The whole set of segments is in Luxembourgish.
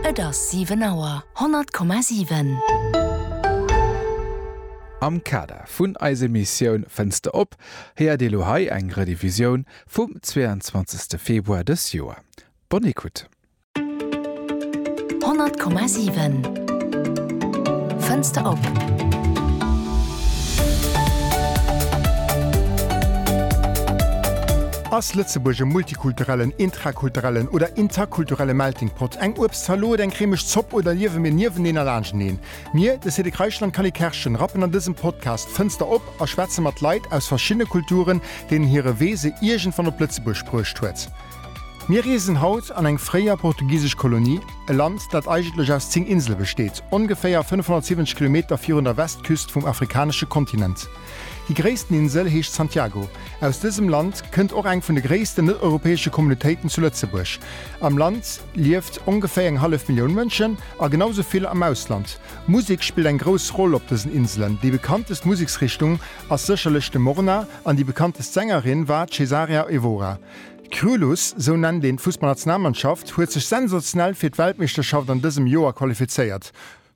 Et ass 7 Auer. 100,7. Am Kader vun eis Emissioun Fenster op héiert Dir elo hei eng Rediffusioun vum 22 Februar dës Joer. Bonne écoute. 100,7. Fenster op. Ass Lëtzebuerg e multikulturellen, intrakulturellen oder interkulturelle Melting Pot? Eng Uebstzalot, eng cremeg Zopp oder liewe mir nieweneen a laanschteneen? Mir, de Cédric Reichel an d'Canny Kerschen, rappen an dësem Podcast d'Fënster op a schwätze mat Leit aus verschiddene Kulturen, deenen hire Wee se iergendwann op Lëtzebuerg bruecht huet. Mir reesen haut an eng fréier portugisesch Kolonie, e Land, dat eigentlech aus 10 Insele besteet, ongeféier 570 Kilometer virun der Westküst vum afrikanesche Kontinent. Hir gréissten Insel heescht Santiago. Aus dësem Land kënnt och eng vun de gréissten net-europäesche Communautéiten zu Lëtzebuerg. Am Land lieft ongeféier eng hallef Millioun Mënschen a genau sou vill am Ausland. Musek spillt eng grouss Roll op dësen Inselen. Déi bekanntest Museksrichtung ass sécherlech de Morna an déi bekanntest Sängerin war d'Cesarea Evora. Krylus, sou nennt een d'Fussballnationalmannschaft, huet sech sensationell fir d'Weltmeeschterschaft an dësem Joer qualifizéiert.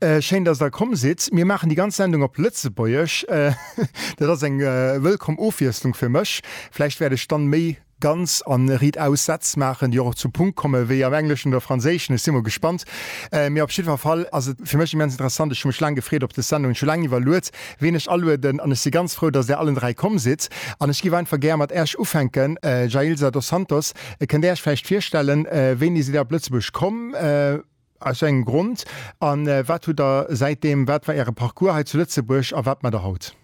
Schéin dass der komm sidd. Mir maachen déi ganz Sendung op Lëtzebuergesch. Dat ass eng wëllkomm Ofwiesslung fir mech. Vläicht wäert ech dann méi ganz an Riit aus Sätz maachen, déi och op zum Punkt kommen, wéi am Engleschen oder Franséischen. Ech si mol gespannt. Mee op jiddwer Fall ass et fir mech immens interessant. Ech hu mech laang gefreet op des Sendung. Ech hu laang iwwerluet, ween ech alueden. An ech si ganz frou, dass där allen dräi komm sidd. An ech géif einfach gär mat Äech ufänken. Jailza dos Santos, kënnt Där Iech vläicht virstellen, wéini sidd Där op Lëtzebuerg komm? Aus wéi engem Grond? A wat hutt Der säitdeem, wat war Äre Parcours hei zu Lëtzebuerg a wat maacht Der haut?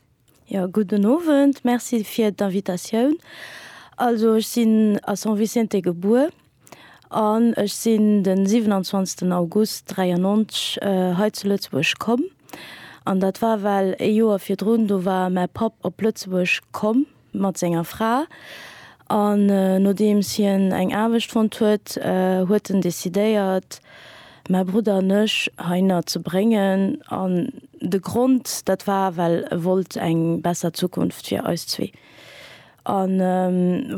Jo, gudden Owend, Merci fir d'Invitatioun. Also ech sinn a San Vicente gebuer an ech sinn de 27 August 93 hei zu Lëtzebuerg komm. An dat war well ee Joer virdrun, do war mäi Papp op Lëtzebuerg komm mat senger Fra an nodeems hien eng Aarbecht fonnt huet, huet en decidéiert mäi Brudder an ech heihinner ze bréngen an de Grond dat war well e wollt eng besser Zukunft fir eis zwee an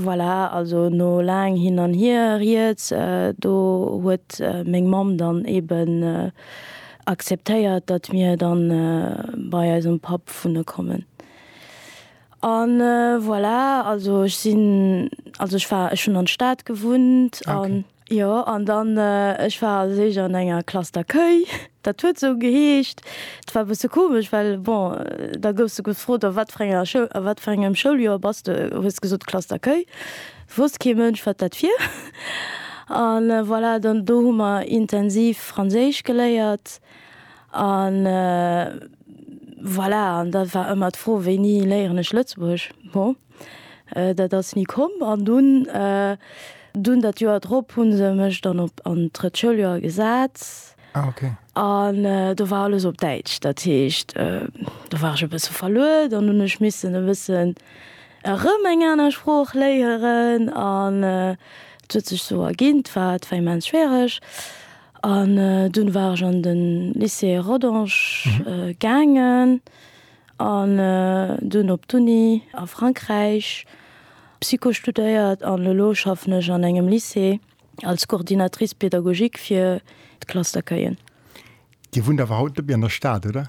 voilà. Also no laang hin an hier rieds do huet meng Mamm dann eben akzeptéiert dat mir dann bei eisem Papp wunne kommen. An voilà, also ech sinn, also ech war, ech hunn an d'Stad gewunnt an. Okay. Jo, an dann, ech war als éischt an enger Classe d'accueil, dat huet esou geheescht. Et war e bësse komesch, well bon, da gouss de gefrot, a wat fir enger Schoul, a wat fir engem Schouljoer bass de, hues gesot Classe d'accueil, wousst kee Mënsch, wat dat wier. An voilà, dann do hu mer intensiv Franséisch geléiert an. Voilà, an da war ëmmer d'Fro, Wéini léieren ech Lëtzebuergesch? Bon, dat ass ni komm. An dunn, dunn dat Joer drop hu se mech dann op an d'drëtt Schouljoer gesat. Ah, ok. An do war alles op Däitsch. Dat heescht, do war ech e bësse verluer. Dann hunn ech missen e bëssen erëm eng aner Sprooch léieren. An et huet sech esou erginn. 't war, 't war immens schwiereg. An dunn war ech an de Lycée Rodange gaangen an dunn op d'Uni a Frankräich Psycho studéiert. An elo schaffen ech an engem Lycée als Coordinatrice pédagogique fir d'Klass d'accueillen. Dir wunnt awer haut net méi an der Stad, oder?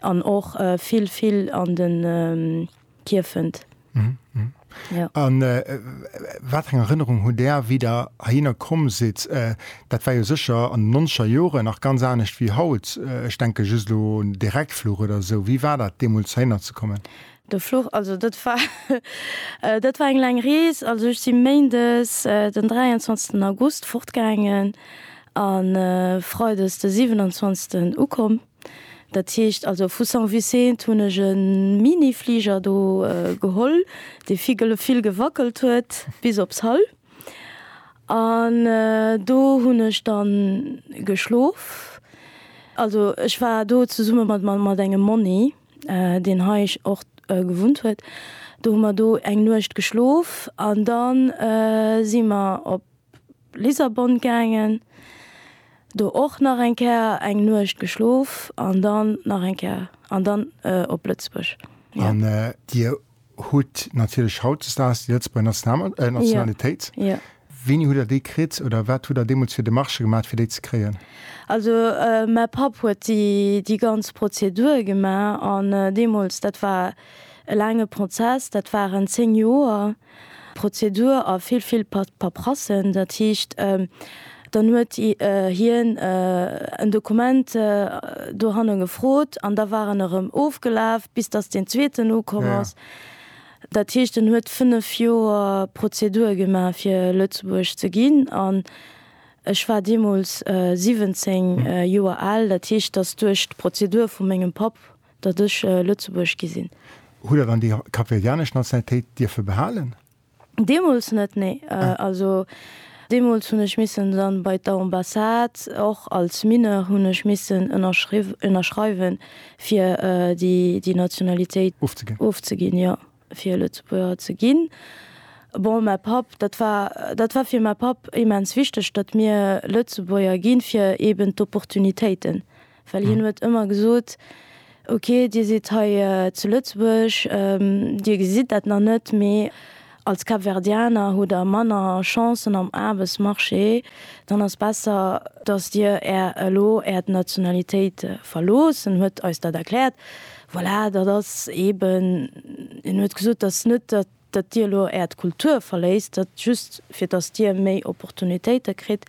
an och vill vill an de Kierfent. An wat eng Erënnerung hutt Där, wéi Der heihinner komm sidd? Dat war jo sécher an den nonzeger Joren nach ganz anescht wéi haut. Ech denke just elo un de Reckfluch oder esou. Wéi war dat deemools heihinner ze kommen? De Fluch, also dat war dat war eng laang Rees. Also ech si méindes den 23 August fortgaangen a freides de 27 ukomm. Dat heescht also vu Saint-Vicent hunn ech e Mini-Fliger do geholl, dee vill gewackelt huet, bis op Sall. An do hunn ech dann geschlof. Also ech war do zesumme mat engem Monni, deen hei och gewunnt huet. Do hu mer do eng Nuecht geschlof an da si mer op. Lissabon gaangen, do och nach eng Kéier eng Nuecht geschlof an dann nach eng Kéier an dann op Lëtzebuerg. An Dir hutt natierlech hautdesdaags déi Lëtzebuerger Nationalitéit. Wéini hutt Der déi kritt oder wat hutt Der deemools fir Demarchë gemaach, fir déi ze kréien? Also mäi Papp huet déi ganz Prozedur gemaach an deemools, dat war e laange Prozess, dat waren zéng Joer. Prozedur a vill, vill Paprasse. Dat heescht, dann huet hien en Dokument dohanne gefrot an da war en erëm ofgelaf, bis datt deen Zweeten ukomm ass. Dat heescht, en huet fënnef Joer Prozedur gemaach, fir Lëtzebuergesch ze ginn. An ech war deemools 17 Joer al. Dat heescht, datt duerch d'Prozedur vu mengem Papp Datt ech Lëtzebuerg gi sinn. Hutt Der dann déi kapverdianesch Nationalitéit dierfe behalen? Deemools net, nee. Also deemools hunn ech missen dann bei d'Ambassade, och als Mineur hunn ech missen ënnerschreiwen, fir déi Nationalitéit ofzeginn, jo. Fir Lëtzebuerger ze ginn. Bon, mäi Papp, dat war, dat war fir mäi Papp immens wichteg, datt mir Lëtzebuerger ginn, fir eben d'Opportunitéiten. Well hien huet ëmmer gesot, ok, dir sidd hei zu Lëtzebuerg, dir gesitt dat nach net, mee als Kapverdianer hutt der manner Chancen am Aarbechtsmarché, dann ass besser, datt dir är elo äert Nationalitéit verloosst. En huet eis dat erkläert. Voilà, dat ass eeben, hien huet gesot, dat ass net, datt Dir elo Äert Kultur verléisst, dat just, fir datt Dir méi Opportunitéite kritt.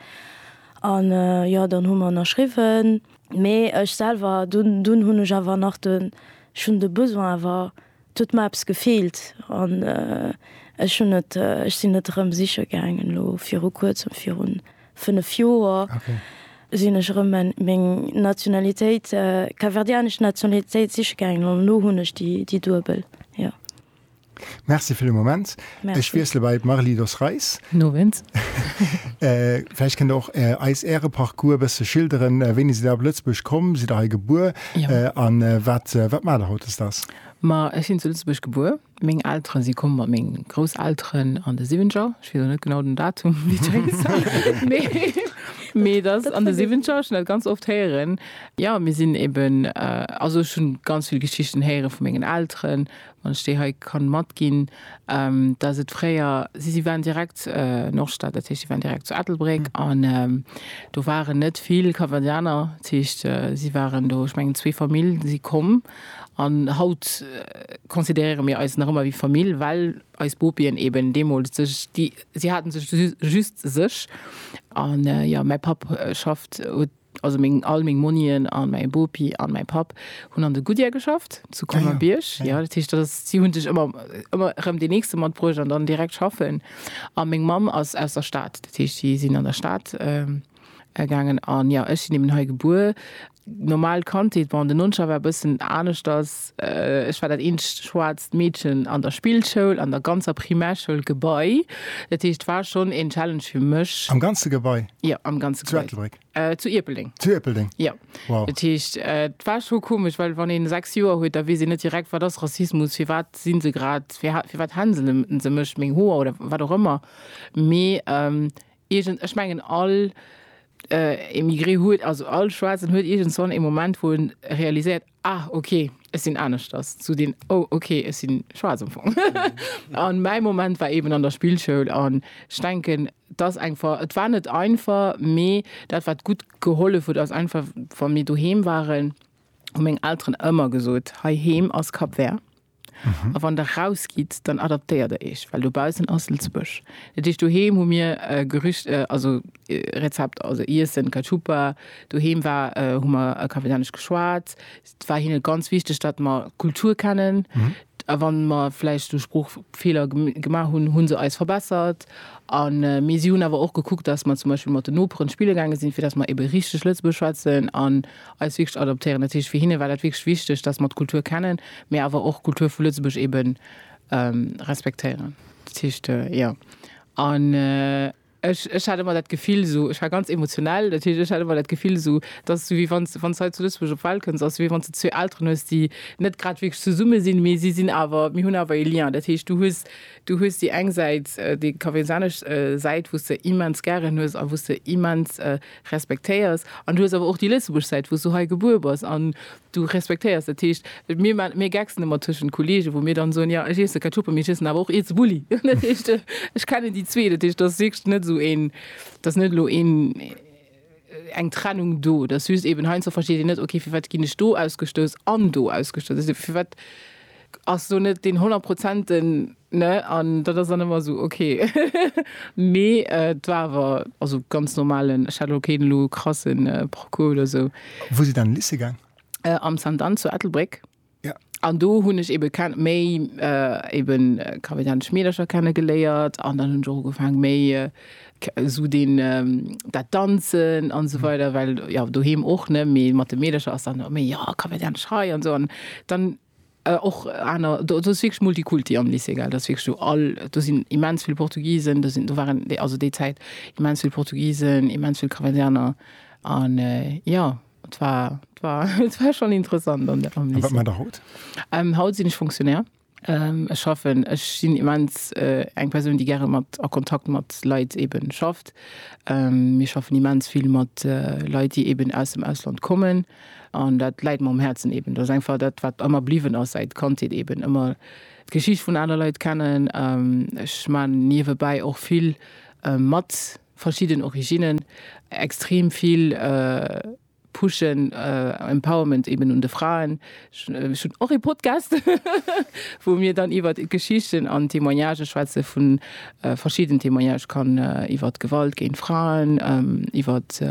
An jo, dann hu mer ënnerschriwwen. Mee ech selwer, dunn, dunn hunn ech awer nach de, ech hunn de Besoin awer, et huet mer eppes gefeelt. An ech hunn et, ech sinn et erëm siche gaangen elo viru Kuerzem, virun 5 Joer sinn ech erëm meng Nationalitéit, kapverdianesch Nationalitéit siche gaangen an elo hunn ech déi duebel, jo. Merci fir de Moment. Merci. Ech wiessele bei d'Marly Dos Reis. Guten Owend. Vläicht kënnt Der och eis Äre Parcours e bësse schilderen. Wéini sidd Der op Lëtzebuerg komm? Sidd Der hei gebuer? Jo. A wat, wat maacht Der hautdesdaags? Ma ech sinn zu Lëtzebuerg gebuer. Meng Elteren si komm mat meng Grousselteren an de Siwenziger. Ech weess elo net genau den Datum, wéi d'Jay gesot huet, mee, mee dat ass an de Siwenziger. Ech hunn dat ganz oft héieren. Jo, mir sinn eben, also ech hunn ganz vill Geschichten héieren vu mengen Elteren, wann ech déi hei kann matginn, dass et fréier, si, si waren direkt Nordstad, dat heescht, si waren direkt zu Ettelbréck an do waren net vill Cambadéaner. Dat heescht, si waren do, ech mengen zwee Famille si komm. An haut consideréiere mir eis nach ëmmer wéi Famill, well eis Bopien eben deemools sech, déi, si haten sech just sech. A jo, mäi Papp schafft, huet, also meng, all meng Monien a mäi Bopi a mäi Papp hunn an de Goodyear geschafft zu Colmer-Bierg. Jo, dat heescht, dat ass, si hu sech ëmmer, ëmmer erëm deen Nächste matbruecht an dann direkt schaffen. A meng Mamm ass aus der Stad, dat heescht, si sinn an der Stad. Gaangen an jo ech sinn eben hei gebuer. Normal Kandheet, bon den Nonscher war bëssen aneschters, ech war dat eenzegt schwaarzt Meedchen an der Spillschoul, an der ganzer Primärschoul Gebai, dat heescht war schonn een Challenge fir mech. Am ganze Gebai? Jo am ganze Gebai. Zu Ettelbréck? Zu Ierpeldeng. Zu Ierpeldeng? Jo. Wow. Dat heescht et war scho komesch, well wann ee 6 Joer huet, da weess een net direkt wat ass Rassismus, firwat si se grad, firwat hänseln se mech, meng Hoer oder wat och ëmmer, mee Iergend, ech mengen all Emigré huet, also all Schwaarzen huet iergendswann ee Moment, wou en realiséiert, Ah, ok, ech sinn aneschters, sou deen Oh, ok, ech si schwaarz am Fong. An mäi Moment war eben an der Spillschoul an ech denken, et ass einfach, et war net einfach, mee dat wat gutt gehollef huet ass einfach, wa mir doheem waren, hu meng Elteren ëmmer gesot, Heiheem ass Cap Vert. A wann der rausgitt, dann adaptéiert der iech, well dobaussen ass Lëtzebuerg. Dat heescht, doheem hu mir Gerücht, also Rezepter, also Iessen, Cachupa. Doheem war, hu mer Kapellanesch geschwat. Et war hinne ganz wichteg, datt mer d'Kultur kennen. A wa mer vläicht do Sproochfeeler gemaach hunn, hu se eis verbessert. A mee si hunn awer och gekuckt, datt mer zum Beispill mat den Noperen spille gaange sinn, fir datt mer ebe richteg Lëtzebuergesch schwätzen. eis wierklech adoptéieren. Dat heescht, fir hinne war dat wierklech wichteg, dass mer d'Kultur kennen, mä awer och d'Kultur vu Lëtzebuerg ebe respektéieren. Dat heescht, jo. An ech, ech hat ëmmer dat Gefill esou, ech war ganz emotionell, dat heescht, ech hat ëmmer dat Gefill esou, et ass esou, wéi wann s, wann s hei zu Lëtzebuerg op d'Welt kënns, ass esou, wéi wann s de zwee Elteren hues, déi net grad wierklech zesumme sinn, mee si sinn awer, mir hunn awer e Lien. Dat heescht, du hues, du hues déi eng Säit, déi kafeesanesch Säit, wou s de immens gären hues a wou s de immens, respektéiers an du hues awer och déi lëtzebuergesch Säit wou s du hei gebuer bass an du respektéiers. Dat heescht, mir man, mir gecksen ëmmer tëschent Kolleegen, wou mir dann soen, jo ech iesse keng Tupper, mee ech iessen awer och ee zu Bulli. Dat heescht, ech kennen déi zwee, dat heescht, dat ass wierklech net esou een, dat ass net elo een, eng Trennung do, dat ass just eben, heiansdo versteet een net, okay, firwat ginn ech do ausgestouss an do ausgestouss, firwat. Ass do net deen honnertprozenten, ne? An dat ass dann ëmmer esou ok. Mee et war awer also ganz normalen, ech hat elo keen elo krasse Parcours oder esou. Wou sidd Dir an de Lycée gaang? Am Sainte Anne zu Ettelbréck. Jo. An do hunn ech eebe kenne méi eebe kavidanesch Meedercher kenne geléiert an dann hunn ech och ugefaangen méi esou deen dat Danzen an esou weider, well jo doheem och, ne? Mee mat de Meedercher ass dann ëmmer méi jo kavidanesch hei an esou an dann, Och aner, do ass wierklech Multikulti am Lycée, gell, dat ass wierklech do all, do sinn immens vill Portugisen, do sinn, do waren déi, also déi Zäit immens vill Portugisen, immens vill Cambodjaner an jo, et war, et war, et war schonn interessant am Lycée. A wat maacht Der haut? Haut sinn ech Fonctionnaire. Ech schaffen, ech sinn immens eng Persoun, déi gäre mat, a Kontakt mat Leit ebe schafft. Mir schaffen immens vill mat Leit, déi eeben aus dem Ausland kommen. An dat läit mer um Häerzen eben. Dat ass einfach dat, wat ëmmer bliwwen ass säit Kandheet, eben ëmmer d'Geschicht vun aner Leit kennen. Ech maachen niewebäi och vill mat verschidden Originnen, extrem vill pushen, Empowerment eben un de Fraen. Ech hunn och ee Podcast, wou mir dann iwwert d'Geschichten an d'Témoignage schwätze vun verschidden Témoignage kann iwwert Gewalt géint Fraen, iwwert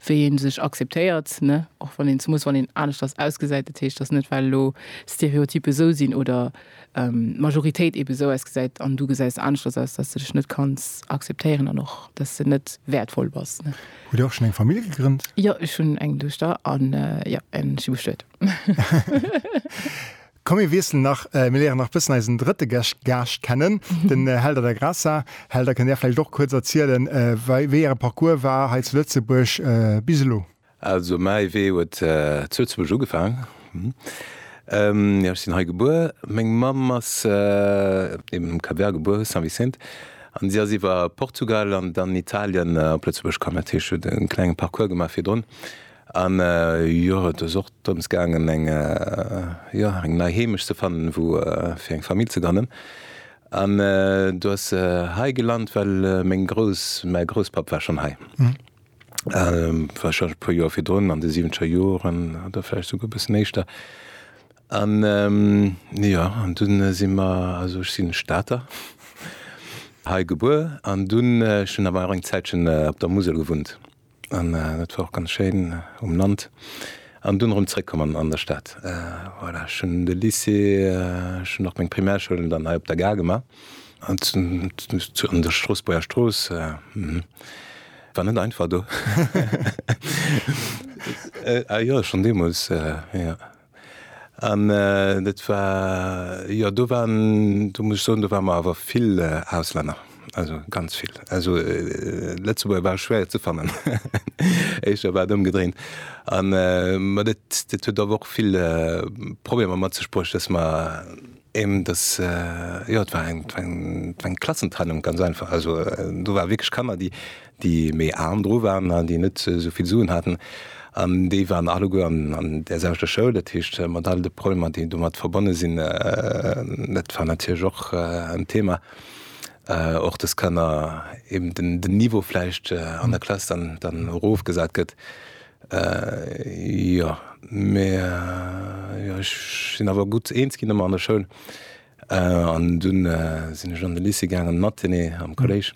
wéi ee sech akzeptéiert, ne, och wann een zemoos wann een aneschters ausgesäit. Dat heescht, datt net well elo Stereotype esou sinn oder d'Majoritéit eebe esou ausgesäit an du gesäis aneschters aus, datt de dech net kanns akzeptéieren an och datt de net wäertvoll bass, ne. Hutt Dir och schonn eng Famill gegrënnt? Jo, ech hunn eng Duechter an jo, ech si bestuet. Komm mir wiesselen nach, mir léieren nach bëssen eisen drëtte Gäscht, Gaascht kennen, den Helder da Graça. Helder, kënnt Där vläicht och kuerz erzielen, wei, wéi Äre Parcours war hei zu Lëtzebuerg bis elo? Also mäi Wee huet zu Lëtzebuerg ugefaangen, jo, ech sinn hei gebuer. Meng Mamm ass eben um Cap Vert gebuer, San Vicente, an si ass iwwer Portugal an dann Italien op Lëtzebuerg komm. Dat heescht, si huet e klenge Parcours gemaach virdrun. An jo, et ass och drëms gaangen eng, jo, eng nei Heemecht ze fannen, wou fir eng Famill ze grënnen. An do ass se hei gelant, well meng Grouss, mäi Grousspapp war schonn hei, warscheinlech e puer Joer virdrun, an de siwenzger Joren oder vläicht souguer e bëssen éischter. An jo, an dunn si mer, also ech sinn e Stater, hei gebuer an dunn, ech hunn awer och eng Zäitchen op der Musel gewunnt. An et war och ganz schéin um Land an dunn erëm zréckkommen an der Stad. Voilà, ech hunn de Lycée, ech hunn och meng Primärschoul dann hei op der Gare gemaach. An an der Stroossbuerger Strooss, war net einfach do. A jo, schonn deemools, jo. An dat war, jo, do waren, do muss ech soen, do ware mer awer vill Auslänner, also ganz vill. Also Lëtzebuerger ware schwéier ze fannen, éischter war et ëmgedréint. A mä dat, dat huet awer och vill Problemer mat sech bruecht, datt mer eben, datt, jo, et war eng, et war eng Klassentrennung ganz einfach. Also do ware wierklech Kanner, déi déi méi aarm dru waren an déi net esou vill Suen haten, an déi waren alleguer an där selwechter Schoul. Dat heescht, mat all de Problemer, déi domat verbonne sinn, dat war natierlech och en Thema, och dass Kanner eben den Niveau vläicht an der Klass dann erofgesat gëtt. Jo, mä jo, ech sinn awer gutt eens ginn ëmmer an der Schoul an dunn sinn ech an de Lycée gaangen, Mathé am Kolléisch.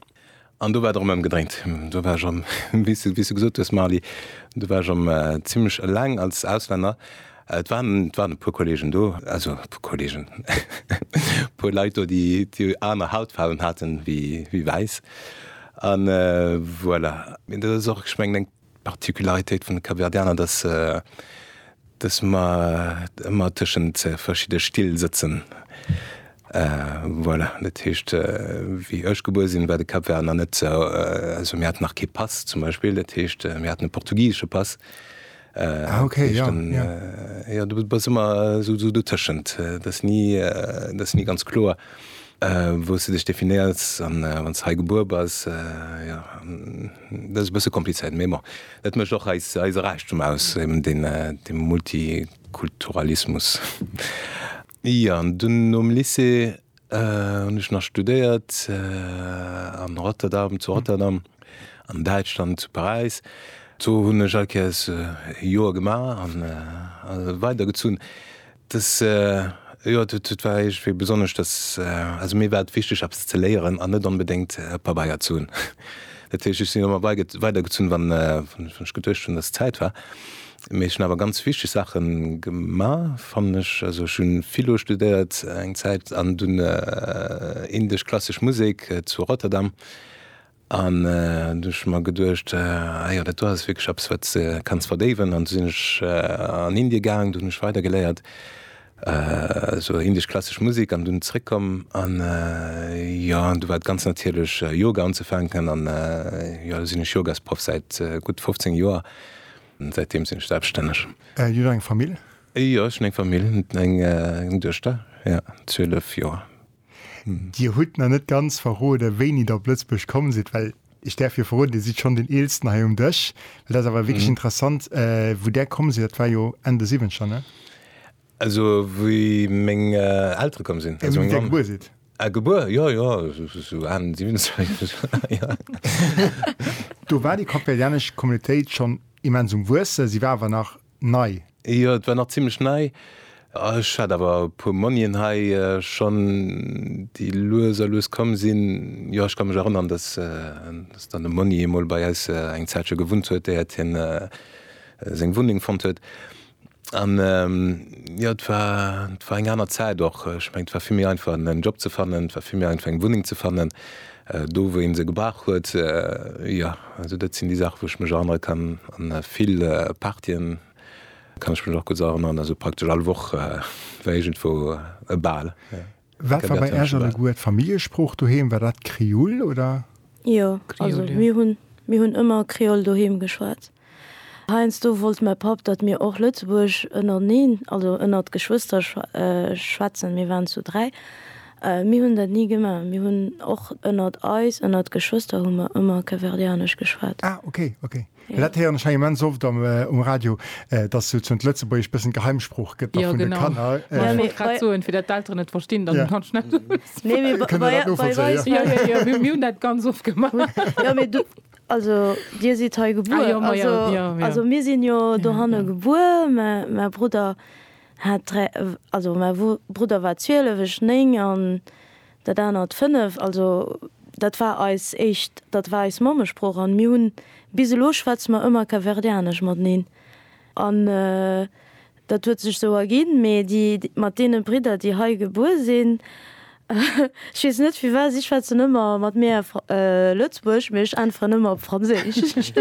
An do war et erëm ëmgedréint. Do war ech erëm, wéi s du gesot hues, Marly, do war ech erëm zimlech eleng als Auslänner. Et waren e puer Kolleegen do, also e puer Kolleegen, e puer Leit do, déi aner Hautfaarwen haten wéi wäiss. An voilà, dat ass och, ech mengen, eng D'Particularitéit vun de Kapverdianer, dass se, dass mer ëmmer tëschent verschidde Still sëtzen. Voilà, dat heescht, wéi ech gebuer sinn, war de Kapvert nach net sou, also mir haten nach kee Pass zum Beispill, dat heescht, mir haten e portugisesche Pass. Ah okay, jo, jo. Jo, du bass ëmmer sou dotëschent. Dat ass ni, dat ass ni ganz kloer, wou s de dech definéiers, wann s hei gebuer bass, jo. Dat ass e bësse komplizéiert, mee bon, dat mécht och eis Räichtum aus, eben dee Multikulturalismus. Jo, an dunn nom Lycée hunn ech nach studéiert a Rotterdam, zu Rotterdam, an Däitschland, zu Paräis. Do hunn ech all Kéiers e Joer gemaach an weidergezunn. Des Joer huet et war iergendwéi besonnesch, dass, also mir war et wichteg eppes ze léieren an net onbedéngt Pabeier ze hunn. Dat heescht ech sinn ëmmer weidergezunn wann ech geduecht hunn, dass Zäit war. Mee ech hunn awer ganz wichteg Saache gemaach fannen ech. Also ech hu Philo studéiert eng Zäit an dunn Indesch, klassesch Musek zu Rotterdam An du hu ech mer geduecht, ah jo, dat do ass wierklech eppes, wat s de kanns verdéiwen. An du sinn ech an Indie gaang, do hunn ech weider geléiert, esou indesch klassesch Musek. An dunn zréckkomm an, jo, an du war et ganz natierlech, Yoga unzefänken. An jo, elo sinn ech Yogasproff säit gutt 15 Joer. Säitdeem sinn ech selbststänneg. Dir hutt eng Famill? Jo, ech hunn eng Famill, eng Duechter, jo, 12 Joer. Dir hutt nach net ganz verrode wéini der op Lëtzebuerg komm sidd, well ech däerf jo verroden, Dir sidd schonn deen Eelsten hei um Dësch. Dat ass awer wierklech interessant wou där komm sidd, dat war jo Enn de Siwwenzeger, ne? Also wéi meng Eltere komm sinn. Wéi Dir gebuer sidd. Ah gebuer, jo jo sou Enn Siwwenzeger, jo. Do war déi kapverdianesch Communautéit schonn immens um Wuesse, si war awer nach nei? Jo, et war nach zimmlech nei. Ech hat awer e puer Monien hei schonn, déi lues a lues komm sinn. Jo, ech ka mech erënnern, dass dann de Monni emol bei eis eng Zäitche gewunnt huet, éiert hien seng Wunneng fonnt huet. An jo, et war, et war eng aner Zäit och. Ech mengen, et war vill méi einfach, en Job ze fannen, et war vill méi einfach, eng Wunneng ze fannen. Do wou een se gebrauch huet, jo. Also dat sinn déi Saachen wou ech mech erënnere kann. An vill Partyen kann ech mech och gutt erënneren, also praktesch all Woch war iergendwou e Bal. Wat war bei Äech alleguer d'Familljesprooch doheem? War dat Krioll oder? Jo, also mir hunn mir hunn ëmmer Krioll doheem geschwat. Heiansdo wollt mäi Papp, datt mir och Lëtzebuergesch ënnerteneen, also ënnert d'Geschwëster schwätzen, mir waren zu dräi. Mir hunn dat ni gemaach, mir hunn och ënnert eis, ënnert d'Geschwëster hu mer ëmmer Capverdianesch geschwat. Ah ok, ok. Well dat héieren ech hei immens oft um Radio, datt souzesoen d'Lëtzebuergesch e bëssen Geheimsprooch gëtt da vun de Kanner. Jo genau, ech wollt grad soen, fir datt d'Elteren et verstinn, dann kann ech net. Kënnt Der dat novollzéien? Jo, jo, jo, mir hunn dat ganz oft gemaach. Also dir sidd hei gebuer? Ah jo, ma jo, jo, jo. Also mir sinn jo dohanne gebuer, mä mäi Brudder hat dräi, also mäi Brudder war 12, ech 9 an dat anert 5. Also dat war eis éischt, dat war eis Mammesprooch an mir hunn, bis elo schwätze mer ëmmer Kapverdianesch mateneen an. Dat huet sech sou erginn, mee déi mat deene Bridder, déi hei gebuer sinn, ech weess net firwat, si schwätzen ëmmer mat mir Lëtzebuergesch, mee ech äntweren ëmmer op Franséisch.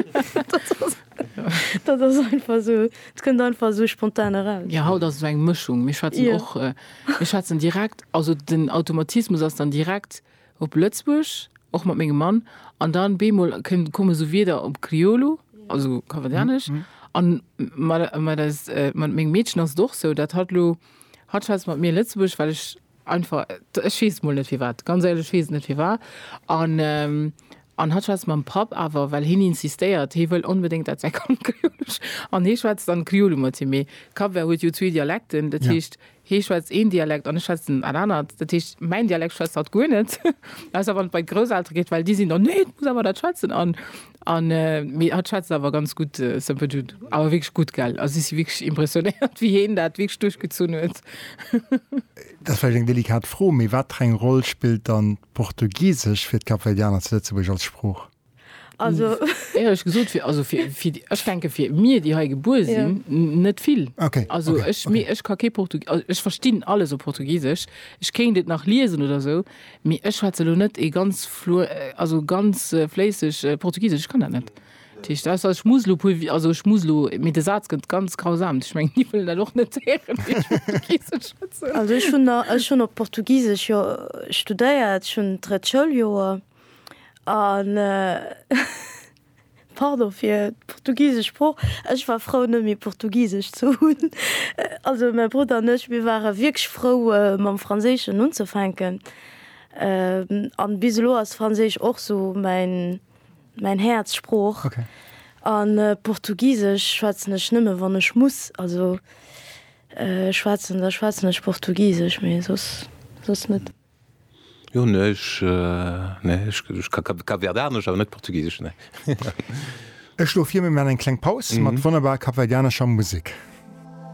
Dat ass einfach sou, et kënnt einfach sou spontan eraus. Jo, haut ass et sou eng Mëschung. Mir schwätzen och, mir schwätzen direkt, also den Automatismus ass dann direkt. op Lëtzbuerg, och mat mengem Mann, an dann bemol kënn komme sou Wierder op Kriolu, also Kapverdianesch, an mat mat eis mat mengem Meedchen ass et och sou, dat hat lo hat schwätzt mat mir Lëtzebuergesch, well ech einfach ech weess et mol net firwat, ganz éierlech, ech weess et net firwat, an an hat schwätzt mam Papp awer, well hien insistéiert, hie wëll onbedéngt dat säi Kand Kriolu an hie schwätzt dann Kriolu mat him, mee Kapvert huet jo zwee Dialekten, dat heescht Hee schwätzt een Dialekt an ech schwätzen en anert. Dat heescht, mäin Dialekt schwätzt hatt guer net, ausser wann et bei d'Grousseltere geet, well déi sinn dann, Nee, et muss awer dat schwätzen! An, an, mee hatt schwätzt awer ganz gutt Semperdutt, awer wierklech gutt, gell? Also, ech si wierklech impressionéiert, wéi heen dat wierklech duerchgezunn huet. Dat ass vläicht eng delikat Fro, mee wat fir eng Roll spillt dann d'Portugisesch fir d'Kapverdianer zu Lëtzebuerg als Sprooch? Also. Éierlech gesot, fir, also fir, fir déi, ech denke fir mir, déi hei gebuer Ja. sinn, n- net vill. Okay, Also okay, ech, okay. mir, ech ka kee Portug, also ech verstinn alles op Portugisesch, ech kéint et nach liesen oder esou, mee ech schwätze lo net ee ganz flu, also ganz äh, fléisseg äh, Portugisesch, ech kann dat net. Dat heescht, ausser ech muss lo puer, Wi- also ech muss lo, mee de Saz gëtt ganz grausam, ech mengen, déi wëllen dat och net héieren, wéi ech Portugisesch schwätzen. Also ech hunn, a, ech hunn op Portugisesch jo studéiert, ech hunn d'drëtt Schouljoer. An pardon fir d'portugisesch Sprooch, ech war frou net méi portugisesch ze hunn. Also mäi Brudder an ech, mir ware wierklech frou mam Franséischen unzefänken. An bis elo ass Franséisch och sou mäin, mäin Häerzsprooch. An portugisesch schwätzen ech nëmme wann ech muss, also schwätzen da schwätzen ech portugisesch, mee soss, soss net. Jo, ech ka kapverdianesch, awer net portugisesch, nee. Ech schloe vir, mir maachen eng kleng Paus mat wonnerbarer kapverdianescher Musek.